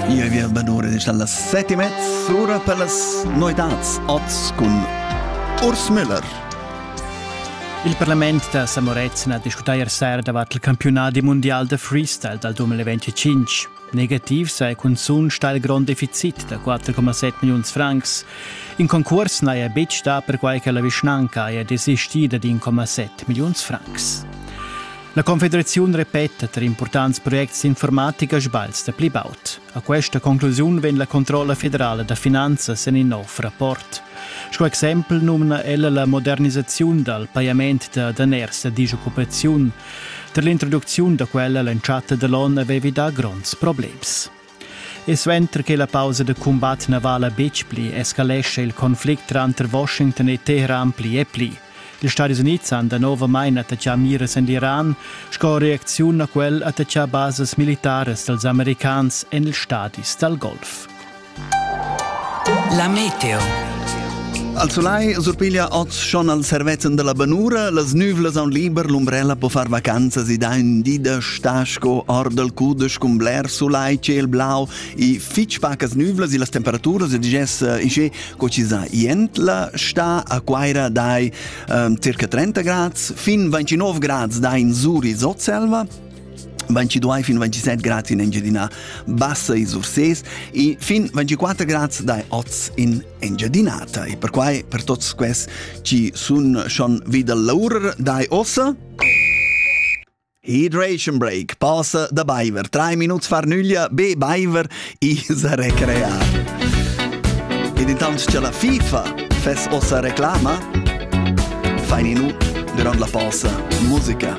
Io vi al badore dalla sette e mezza ora per las noetats oz cun Urs Müller. Il parlament da Samorezzen ha discutai sera davant il campiunat mundial da freestyle dal 2025. Negativ sei cunzun stal grond deficit da 4,7 milliuns francs. In concurs n'haja betg dà perquai che la vischnanca haja desisti da 1,7 milliuns francs. La Confederaziun repeta tar impurtants projects d'informatica sbagls da pli baud. A questa conclusiun vegn la controlla federala da finanzas en in nov rapport. Sco exempel numna ella la modernisaziun dal pajament da daners da disoccupaziun. Tar l'introducziun da quella l'entschatta da l'onn avevi dà gronds problems. E suenter che la pausa da cumbat na vala betg pli, escalescha il conflict tranter Washington e Teheran pli e pli. Ils Stadis Unids han danovamain attachà miras en l'Iran. Sco reacziun a quel attachà basas militaras dals americans en ils stadis dal Golf. La meteo Al sulai surpiglia oz schon al servezzan della benura, las nüvlas aun liber l'umbrella po far vacanzas ed ha in di da sta sco or dal cudesch cun bler sulai, ciel blau e fitch pacas nüvlas e las temperaturas e digess isce co ci sa jent la sta a Quaira dai um, circa 30 grads, fin 29 grads dai in Zuri Sotselva, 22 fin 27 gradi in Engiadina Bassa e Surses e fin 24 gradi dai oz in Engiadinata e perquai per tots quels chi sun schon vida l'oura dai ossa Hydration break passa da baiver 3 minuts far nüglia be baiver i sa recrear. Ed intant cha la FIFA fess ossa reclama, fain nu durant la posa musica.